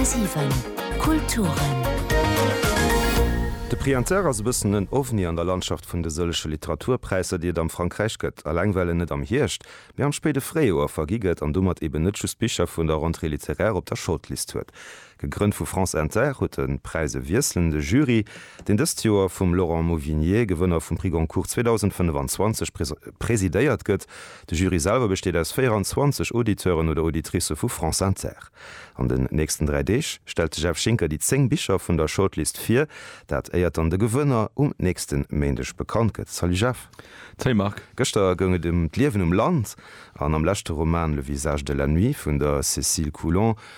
10,7 Kulturen. De Prix Inter ass e bëssen en Ovni an der Landschaft vun de sëllege Literaturpräisser, déi et am Frankräich gëtt. Alleng well en net am Hierscht, mee am spéide Fréijoer vergi gëtt an domat eben net just Bicher vun der Rentrée littéraire op der Shortlist huet. Gegrënnt vu France Inter huet de Präise wiesselnde Jury, deen dëst Joer vum Laurent Mauvignier, Gewënner vum Prix Goncourt 2025, presidéiert gëtt. De Jury selwer besteet aus 24 Auditeuren oder Auditricë vu France Inter. An den nächsten dräi Deeg stellt de Jeff Schinker déi zéng Bicher vun der Shortlist vir, dat éiert dann de Gewënner um nächste Méindeg bekannt gëtt. Salut Jeff. Salut Marc. Gëschter goung et ëm d'Liewen um Land an am leschte Roman Le visage de la nuit vun der Cécile Coulon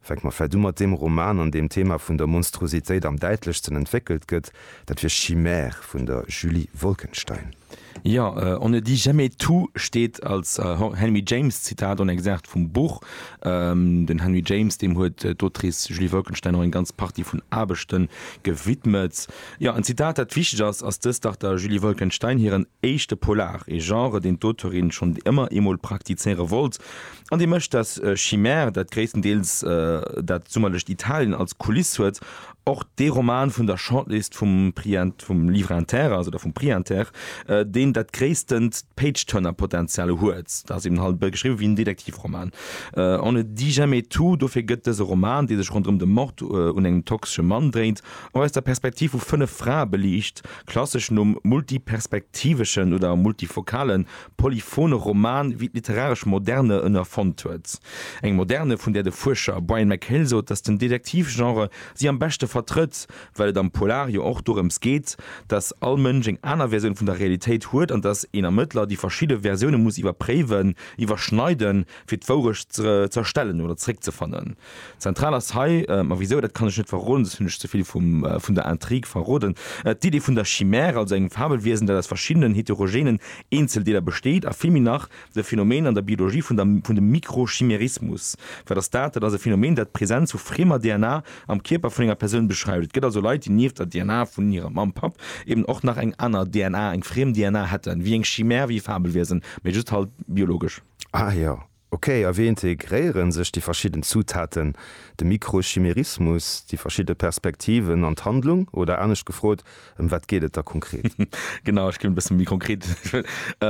Fänke mer vläit u mat deem Roman, an deem d'Thema vun der Monstruositéit am däitlechsten entwéckelt gëtt, dat wier Chimère vun der Julie Wolkenstein. Jo, On ne dit jamais tout steet als Henry James Zitat an Exerkt vum Buch. Den Henry James, deem huet d'Autrice Julie Wolkenstein och eng ganz Partie vun Aarbechte gewidmet. Jo, en Zitat, dat wichteg ass, ass dëst dach der Julie Wolkenstein hiren éischte Polar, ee Genre, deen d'Auteurin schonn ëmmer eemol praktizéiere wollt, An dee mécht dass Chimère, dat gréisstendeels dat summerlecht Italien als Kuliss huet, och dee Roman vun der Shortlist vum Prix vum Livre Inter ass, oder vum Prix Inter, deen dat gréisstend Page-Turner-Potenzial huet. Dat ass eben halt e bësse geschriwwe wéi en Detektivroman, on ne dit jamais tout. Dofir gëtt dëse Roman, dee sech ronderëm de Mord un engem toxesche Mann dréint, och aus der Perspektiv vu fënnef Frae beliicht, klassesch nom multiperspektiveschen oder multifokale polyphone Roman wéi d'literaresch Moderne en erfonnt huet. Eng Moderne, vun där de Fuerscher Brian McHale sot, datt den Detektivgenre si am beschte vertrëtt, well et am Polar jo och dorëms geet, datt all Mënsch eng aner Versioun vun der Realitéit huet an datt een Ermëttler déi verschidde Versioune muss iwwerpréiwen, iwwerschneiden, fir d'Wourecht z'erstellen oder zeréckzefannen. Zentral ass hei, ma wisou, dat kann ech net verroden, soss hunn ech ze vill vun der Intrigue verroden, d'Idee vun der Chimère, also engem Fabelwiesen, dat aus verschiddenen heterogenen Eenzeldeeler besteet, a vill méi nach de Phänomen an der Biologie vun dem Mikrochimerismus. Wat ass dat? Dat ass e Phänomen, dat d'Presenz vu friemer DNA am Kierper vun enger Persoun beschreift. Et gëtt also Leit, déi nieft der DNA vun hirer Mamm, Papp eben och nach eng aner DNA, eng friem DNA hätten, wéi eng Chimère, wéi e Fabelwiesen, mä just halt biologesch. Ah jo, Ok, a wéi integréieren sech déi verschidden Zutaten, de Mikrochimerismus, déi verschidde Perspektiven an d'Handlung? Oder anescht gefrot, ëm wat geet et da konkret? Genau, ech ginn e bësse méi konkret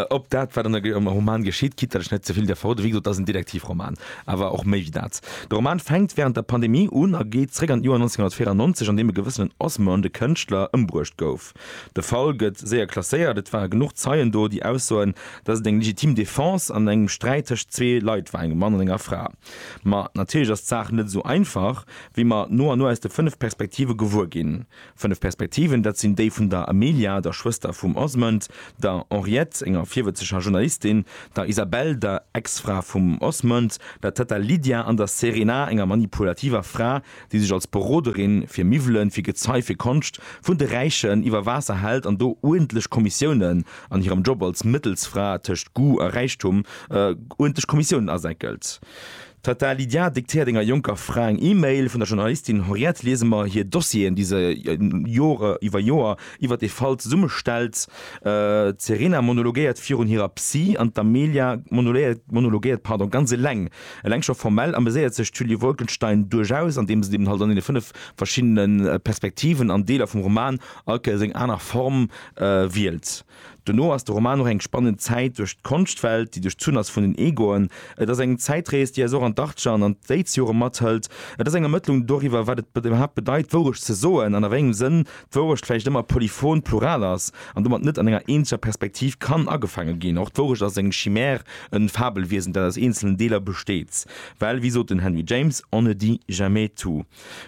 op dat, wat an engem Roman geschitt, quitte datt ech net ze vill däerf verroden. Wéi gesot, et ass en Detektivroman, awer och méi wéi dat. De Roman fänkt wärend der Pandemie un a geet zréck an d'Joer 1994, an deem e gewëssenen Osmond, e Kënschtler, ëmbruecht gouf. De Fall gëtt séier klasséiert, et ware genuch Zeien do, déi aussoen, datt et eng legitim Defense an engem Sträit tëscht zwee Leit war, engem Mann an enger Fra. Ma natierlech ass d'Saach net esou einfach, wéi mer no an no aus de fënnef Perspektive gewuer ginn. Fënnef Perspektiven, dat sinn déi vun der Amelia, der Schwëster vum Osmond, der Henriette, enger virwëtzeger Journalistin, der Isabelle, der Ex-Fra vum Osmond, der Tëtta Lydia an der Serena, enger manipulativer Fra, déi sech als Beroderin fir Miwwelen, fir Gezei, fir Konscht vun de Räichen iwwer Waasser hält an do uerdentlech Kommissiounen an hirem Job als Mëttelsfra tëscht Goût a Räichtum uerdentlech Kommissiounen asäckelt. D'Tata Lydia diktéiert enger jonker Fra eng E-Mail, vun der Journalistin Henriette liese mer hir Dossieren, déi se Jore iwwer Joer iwwer dee Fall zesummestellt. D'Serena monologéiert virun hirer Psy an d'Amelia monologéiert, pardon, ganz eleng Eleng scho formell ameséiert sech d'Julie Wolkenstein duerchaus, andeems et eben halt an deene fënnef verschiddene Perspektiven an Deeler vum Roman all Kéiers eng aner Form wielt. Dono ass de Roman och eng spannend Zäit duerch d'Konschtwelt, déi duerchzunn ass vun den Egoen. Et ass eng Zäitrees, déi eis och an d'Achtger an an d'Éidsjore mathëlt. Et ass eng Ermëttlung doriwwer, wat et iwwerhaapt bedeit, Wourecht ze soen an a wéi engem Sënn d'Wourecht vläicht ëmmer polyphon, plural ass an domat net an enger eenzeger Perspektiv kann agefaange ginn. Och d'Wourecht ass eng Chimère, en Fabelwiesen, dat aus eenzelen Deeler besteet. Well, wéi sot den Henry James, On ne dit jamais tout.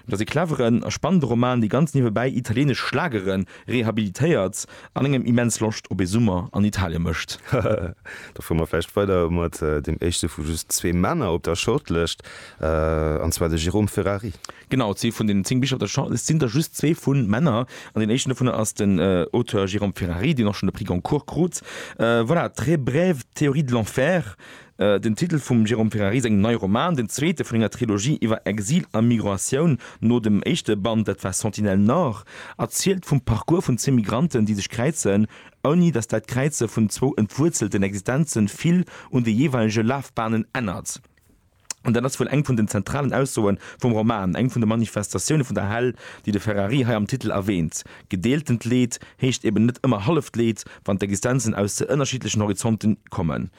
Et ass e cleveren a spannende Roman, dee ganz niewebäi italieenesch Schlagere rehabilitéiert an engem immens Loscht op ee Summer an Italie mécht. Da fuere mer vläicht weider mat deem éischte vu just zwee Männer op der Shortlëscht, an zwar de Jérôme Ferrari. Genau, zwee vun den zéng Bicher op der Shortlist sinn der just zwee vu Männer. An deen éischten dovunner ass den Auteur Jérôme Ferrari, deen och schonn de Prix Goncourt krut. Voilà, très brève théorie de l'enfer, den Titel vum Jérôme Ferrari sengem neie Roman, den zweete vun enger Trilogie iwwer Exil a Migratioun. No dem éischte Band, dat war Sentinelle Nord, erzielt vum Parcours vun zwee Migranten, déi sech kräizen, ouni datt dat Kräize vun zwou entwuerzelten Existenze vill un de jeeweilege Lafbahnen ännert. An dat ass wuel eng vun den zentralen Aussoe vum Roman, eng vun de Manifestatioune vun der Hell, déi de Ferrari hei am Titel erwäänt. Gedeeltent Leed heescht eben net ëmmer halleft Leed, wann d'Existenzen aus ze ënnerschiddlechen Horizonte kommen.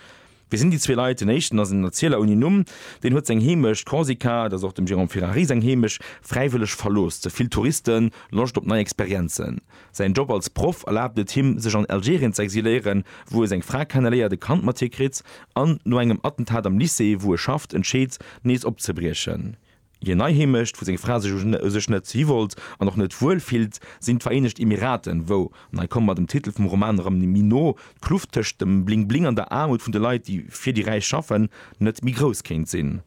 Wie sinn déi zwee Leit? Den éischten ass en Erzieler ouni Numm. Deen huet seng Heemecht, Korsika, et ass och dem Jérôme Ferrari seng Heemecht, fräiwëlleg verlooss. Ze vill Touristen, Loscht op nei Experienzen. Säin Job als Proff erlaabt et him, sech an Algerien ze exiléieren, wou e seng Fra kenneléiert, e Kand mat hir kritt an, no engem Attentat am Lycée, wou e schafft, entscheet, nees opzebriechen. Hir nei Heemecht, wou seng Fra sech u sech net hiwollt an och net wuel fillt, sinn d'Vereenegt Emiraten, wou, an hei komme mer dem Titel vum Roman erëm méi no, d'Kluft tëscht dem Bling-Bling an der Aarmut vun de Leit, déi fir déi Räich schaffen, net méi grouss kéint sinn.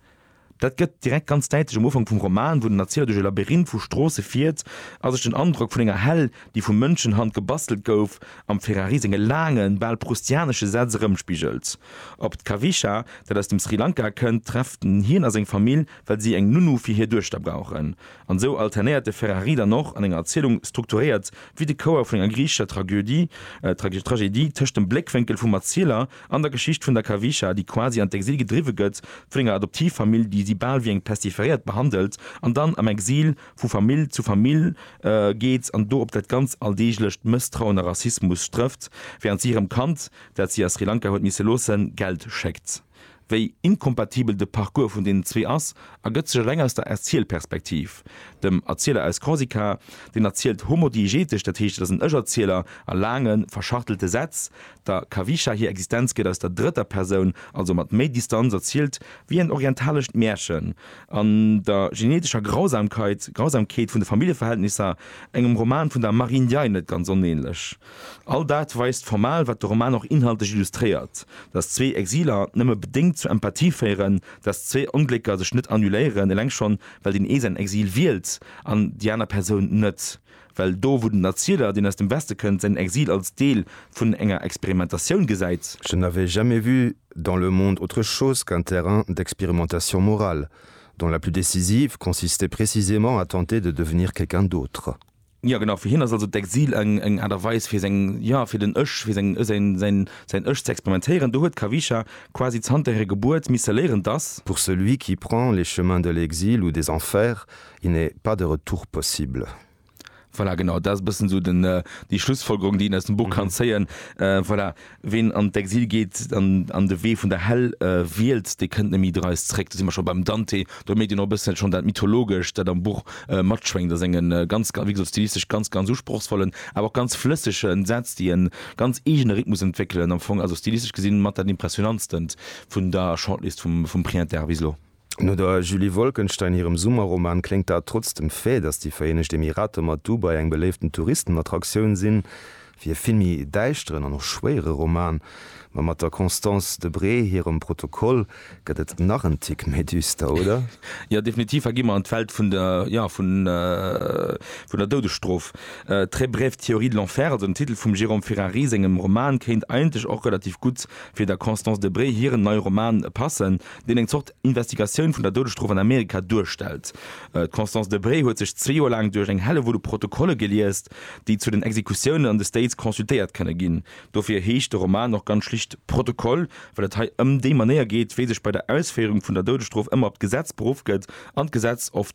Dat gëtt direkt ganz däitlech um Ufank vum Roman, wou den Erzieler duerch e Labyrinth vu Stroosse fiert a sech den Androck vun enger Hell, déi vu Mënschenhand gebastelt gouf, am Ferrari senge laangen, bal proustianesche Sätz erëmspigelt. Op d'Kavisha, dat aus dem Sri Lanka kënnt, trefft en. Hien a seng Famill, well si eng Nounou fir hir Duechter brauchen. An esou alternéiert de Ferrari dann och an enger Erzielung, strukturéiert wéi de Chouer vun enger griichescher Tragödie, Tragedie, tëscht dem Bléckwénkel vum Erzieler, An der Geschicht vun der Kawischa, déi quasi an d'Exil gedriwwe gëtt, vun enger Adoptivfamill, déi si bal wéi eng Pestiferéiert behandelt, an dann am Exil vu Famill zu Famill geet an do op dat ganz alldeeglecht Mësstrauen a Rassismus strëfft, wärend si hirem Kand, dat si a Sri Lanka huet misse loossen, Geld schéckt. Wéi inkompatibel de Parcours vun deenen zwee ass, ergëtt sech eleng aus der Erzielperspektiv. Dem Erzieler aus Korsika, deen erzielt homodiegetesch, dat heescht et ass en Ech-Erzieler a laange verschachtelte Sätz, Der Kawischa hir Existenz gëtt aus der drëtter Persoun, also mat méi Distanz, erzielt, wéi en orientalescht Märchen, an der genetescher Grausamkeit, Grausamkeet vun de Familljeverhältnisser, engem Roman vun der Marie Ndiaye net ganz onähnlech. All dat weist formal, wat de Roman och inhaltlech illustréiert, dass zwee Exiler nëmme bedéngt zur Empathie féieren, dass zwee Onglécker sech net annuléieren, eleng schonn, well deen ee säin Exil wielt an déi aner Persoun net. Well do, wou den Erzieler, deen aus dem Weste kënnt, säin Exil als Deel vun enger Experimentatioun gesäit, Je n'avais jamais vu dans le monde autre chose qu'un terrain d'expérimentation morale, dont la plus décisive consistait précisément à tenter de devenir quelqu'un d'autre. Jo, genau. Fir hien ass also d'Exil eng, eng Aart a Weis fir seng, jo, fir den Ech, fir seng, säin, säin, säin Ech ze experimentéieren. Do huet d'Kawischa quasi zanter hirer Gebuert misse léieren, dass. Pour celui qui prend les chemins de l'exil ou des enfers, Il n'est pas de retour possible. Voilà, genau, dat ass e bëssen esou den, déi Schlussfolgerung, déi een aus dem Buch kann zéien. Voilà, ween an d'Exil geet an, an de Wee vun der Häll wielt, dee kënnt neméi dreist zréck. Do si mer scho beim Dante. Do mierkt een och e bëssen schonn dat Mythologescht, dat am Buch matschwéngt a senge ganz, wéi gesot, stilistesch ganz, ganz usprochsvollen, awer och ganz flëssege Sätz, déi e ganz eegene Rhythmus entwéckelen. Am Fong also stilistesch gesinn mat dat Impressionantstent vun der Shortlist vum, vum Prix Inter bis elo. No der Julie Wolkenstein hirem Summerroman kléngt dat trotz dem Fait, datt déi Vereenegt Emirater mat Dubai eng beléiften Touristenattraktioun sinn, wéi e vill méi däischteren an och schwéiere Roman. Ma mat der Constance Debré hirem Protokoll gëtt et nach en Tick méi düster, oder? Jo, definitiv. Hei gi mer an d'Welt vun der, jo, vun der Doudesstrof. Très brève théorie de l'enfer, also den Titel vum Jérôme Ferrari sengem Roman, kéint eigentlech och relativ gutt fir der Constance Debré hiren neie Roman passen. deen eng Zort Investigatioun vun der Doudesstrof an Amerika duerstellt. D'Constance Debré huet sech zwee Joer laang duerch eng Hellewull u Protokolle geliest, déi zu den Exekutiounen an de States consultéiert kënne ginn. Dofir heescht de Roman och ganz schlicht Protokoll, well et hei ëm déi Manéier geet, wéi sech bei der Ausféierung vun der Doudesstrof ëmmer op d'Gesetz beruff gëtt an d'Gesetz of.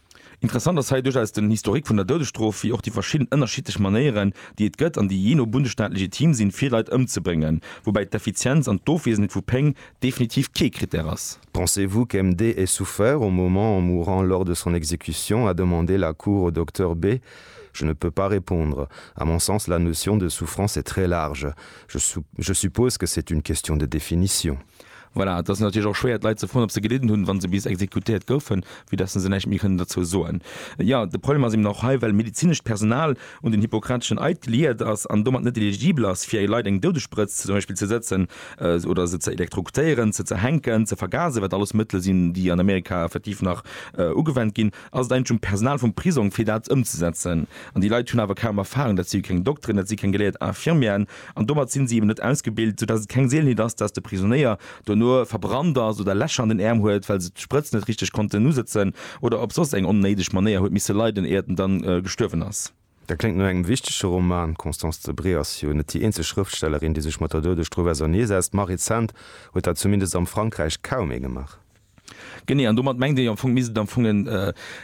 Interessant ass hei duerchaus den Historique vun der Doudesstrof, wéi och déi verschidden ënnerschiddlech Manéieren, déi et gëtt an déi jee no Bundesstaat legitim sinn, fir Leit ëmzebréngen, woubäi d'Effizienz an d'Ofwesenheet vu Péng definitiv kee Krittär ass. Pensez-vous qu'MD ait souffert au moment en mourant lors de son exécution? a demandé la Cour au Docteur B. Je ne peux pas répondre. À mon sens, la notion de souffrance est très large. Je suppose que c'est une question de définition. Voilà, et ass natierlech och schwéier, d'Leit ze froen, ob se gelidden hunn, wa se bis exekutéiert goufen, vue dass se näischt méi kënnen dozou soen. Jo, de Problem ass eben och hei, well medezinescht Personal un den hippokrateschen Eid geliiert ass an domat net eligibel ass, fir Leit eng Doudessprëtz zum Beispill ze sëtzen oder se ze elektrokutéieren, ze zerhänken, ze vergasen, wat alles Mëttele sinn, déi an Amerika effektiv nach ugewennt ginn, ass et eigentlech um Personal vum Prisong, fir dat ëmzesetzen. An déi Leit hunn awer kaum Erfarung, dat si keng Dokteren, dat si keng geléiert Infirmieren. An domat sinn si eben net ausgebilt, soudatt et keng Seelenheet ass, datt de Prisonéier dono verbrannt ass oder Lächer an den Äerm huet, well se d'Sprëtz net richteg konnten usëtzen oder op soss eng onnéideg Manéier huet misse leiden, éiert en dann gestuerwen ass. Dat kléngt no engem wichtege Roman. D'Constance Debré ass jo net déi eenzeg Schrëftstellerin, déi sech mat der Doudestrof auserneesetzt, ma rezent huet dat zumindest am Frankräich kaum ee gemaach. Genee, an domat mengt ee jo am Fong, misst et am Fong en,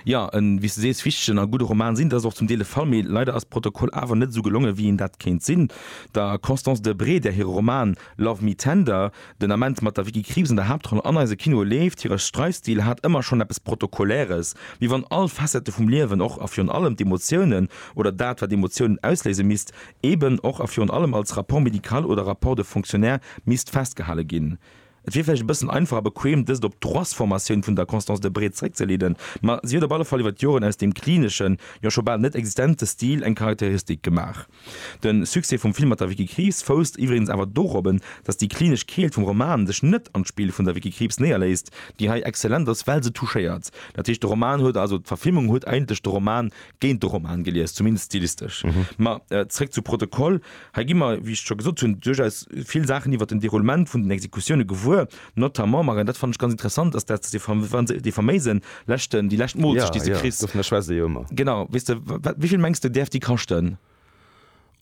jo, e, wéi s de sees, wichtegen a gudde Roman sinn. Dat ass och zum Deel de Fall, mee leider ass Protokoll awer net esou gelongen, wéi een dat kéint sinn. Der Constance Debré, där hire Roman Love Me Tender den Ament mat der Vicky Krieps an der Haaptroll an eise Kinoe leeft, hire Streifstil hat ëmmer schonn eppes Protokolläres, wéi wann all Facette vum Liewen och a virun allem d'Emotiounen oder dat, wat Emotiounen ausléise misst, eeben och a virun allem als Rapport médical oder Rapport de fonctionnaire misst festgehale ginn. Et wier vläicht e bëssen einfach a bequem, dëst op d'Roissformatioun vun der Constance de Bré zeréckzeleeden, ma si huet op alle Fall iwwer d'Joren aus deem klineschen, jo scho bal net existente Stil eng Charakteristik gemaach. De Succès vum Film mat der Vicky Krieps fousst iwwregens awer dorop, datt déi klinesch Keelt vum Roman sech net an d'Spill vun der Vicky Krieps néierléisst, déi hei exzellent ass, well se touchéiert, dat heescht de Roman huet, also d'Verfilmung huet eigentlech de Roman géint de Roman gelies, zumindest stilistesch. Ma zréck zu Protokoll. Hei gi mer, wéi ech scho gesot hunn, duerchaus vill Saachen iwwert den Déroulement vun den Exekutioune gewuer, notamment, Marianne, dat fannen ech ganz interessant, dass dat dee fam wa se dee faméise leschten, déi lescht Moolzecht, déi se kriss. Dovunner schwätzt ee jo ëmmer. Genau. Weess de, wa wat, wéi vill mengs de däerf déi kaschten?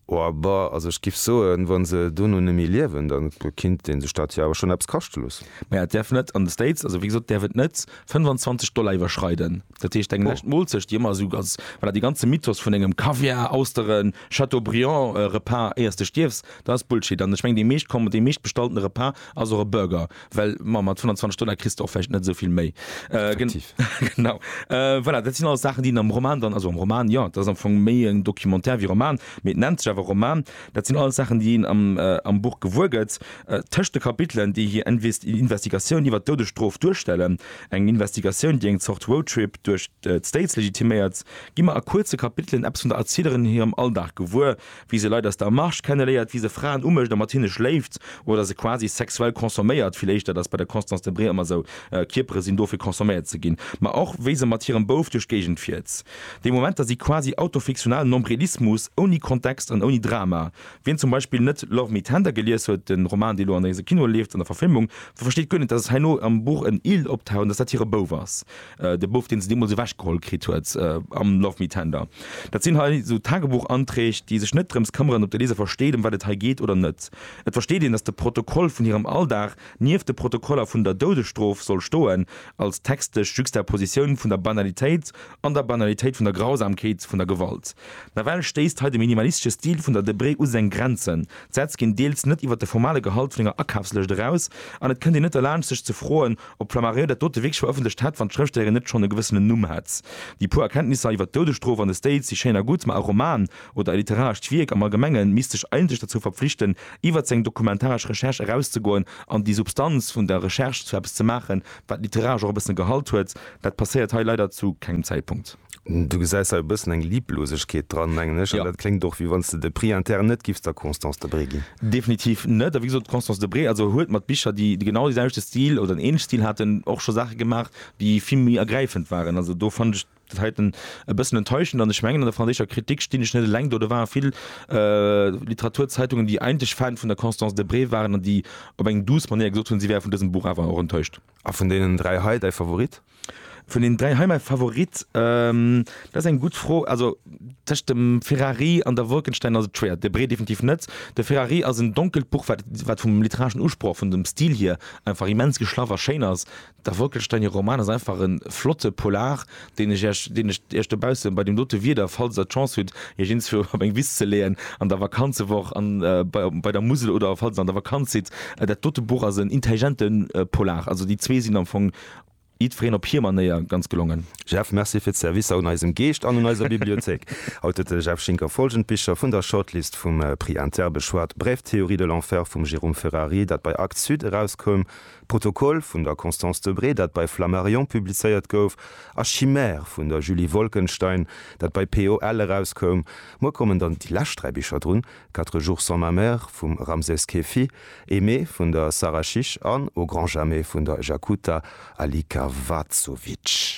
Oh, ba, also ech giff soen, wa se dono net méi liewen, da kinnt ee sech dat jo awer schonn eppes kaschte loossen. Ma ja, et däerf net an de States, also wéi gesot, däerf et net 25 Dollar iwwerschreiden. Dat heescht eng lescht Moolzecht, déi ëmmer esou ganz, voilà, dee ganze Mythos vun engem Kaviar, Austeren, Chateaubriand Repas éiers de stierfs, dat ass Bullshit. An ech mengen dee meescht Kommen, dee meescht bestallten Repas ass och e Burger, well ma mat 25 Dollar kriss de och vläicht net esou vill méi. Effektiv. Genau. Voilà, dat sinn alles Saachen, déi een am Roman dann, also am Roman, jo, et ass am Fong méi en Documentaire wéi Roman, mee et nennt sech awer Roman, dat sinn alles Saachen, déi een am, am Buch gewuer gëtt, tëscht de Kapitelen, déi hir Inves, Investigatioun iwwert d'Doudesstrof duerstellen. Eng Investigatioun, déi eng Zort Roadtrip duerch d'States legitiméiert. Gi mer a kuerze Kapitelen eppes vun der Erzielerin hirem Alldag gewuer, wéi se Leit aus der Marche kenneléiert, wéi se Fraen umécht a mat hinne schléift oder se quasi sexuell consomméiert, vill éischter, dat ass bei der Constance Debré ëmmer esou, Kierpere sinn do fir consomméiert ze ginn, ma och wéi se mat hirem Bouf duerch d'Géigend fiert. Déi Momenter si quasi autofiktional Nombrilismus ouni Kontext an ouni Drama, Wien zum Beispill net Love Me Tender gelies huet, de Roman, dee lo an eise Kinoe leeft, an der Verfilmung, de versteet guer net, dass herno am Buch en Eel optaucht an dass dat hire Bouf ass, de Bouf, deen se deemools ewechgeholl kritt huet am Love Me Tender. Dat sinn hei esou Tagebuchanträg, déi sech net drëms këmmeren, ob de Leser versteet, ëm wat et hei geet oder net. Et versteet een, dass de Protokoll vun hirem Alldag nieft de Protokoller vun der Doudesstrof soll stoen, als textesch Juxtapositioun vun der Banalitéit An der Banalitéit vun der Grausamkeet vun der Gewalt. Nawell stéisst hei de minimalistesche Stil vun der Debré u seng Grenzen. D'Sätz ginn deels net iwwer de formale Gehalt vun enger Akafslëscht eraus, an et kënnt een net derlaanscht sech ze froen, ob d'Flammarion dat dote wierklech verëffentlecht hätt, wann d'Schrëftstellerin net schonn e gewëssenen Numm hätt. Déi puer Erkenntnisser iwwer d'Doudesstrof an de States si schéin a gutt, ma e Roman, oder e literarescht Wierk am Allgemenge misst sech eigentlech derzou verpflichten, iwwer seng dokumentaresch Recherche erauszegoen an déi Substanz vun der Recherche zu eppes ze maachen, wat literaresch och e bëssen Gehalt huet. Dat passéiert hei leider zu kengem Zäitpunkt. Du gesäis hei e bëssen eng Liblosegkeet dran, mengen ech, an dat kléngt och, wéi wann s de de Prix interne net giffs der Constance Debré ginn. Definitiv net. A wéi gesot, d'Constance Debré also huet mat Bicher, déi genau dee selwechte Stil oder en ähnleche Stil haten, och scho Saache gemaach, déi vill méi ergräifend waren. Also do fannen ech dat heiten e bëssen enttäuschend. An ech mengen, an der franséischer Kritik stinn ech net eleng do. Do ware vill Literaturzeitungen, déi eigentlech Fan vun der Constance Debré waren an déi op eng douce Manéier gesot hunn, si wäre vun dësem Buch awer och enttäuscht. A vun deenen dräi hei däi Favorit? Vun deenen dräi hei mäi Favorit? Dat ass eng gutt Fro. Also tëscht dem Ferrari an der Wolkenstein ass et schwéier. Debré definitiv net. De Ferrari ass en donkelt Buch, wat wat vum literareschen Usproch, vun dem Stil hier einfach immens geschlaff a schéin ass. Der Wolkenstein hir Roman ass einfach e flotte Polar, deen ech Iech, deen ech Iech dobausse bei deem dote Wieder, falls Der d'Chance hutt, Iech iergendswou op eng Wiss ze leeën an der Vakanzewoch, an bei, bei der Musel oder falls Der an der Vakanz sidd. Dat dote Buch ass en intelligente Polar. Also déi zwee sinn am Fong, jiddwereen op hir Manéier, ganz gelongen. Jeff, merci fir d'Servicer un eisem Geescht an un eiser Bibliothéik. Haut huet de Jeff Schinker folgend Bicher vun der Shortlist vum Prix Inter beschwat, Brève théorie de l'enfer vum Jérôme Ferrari, dat bei Actes Sud erauskoum, Protokoll vun der Constance Debré, dat bei Flammarion publizéiert gouf, a Chimère vun der Julie Wolkenstein, dat bei POL erauskoum. Muer kommen dann déi lescht dräi Bicher drun, Quatre jours sans ma mère vum Ramses Keffi, Aimée vun der Sara Chiche an Au grand jamais vun der Jakuta Alikavazovitch.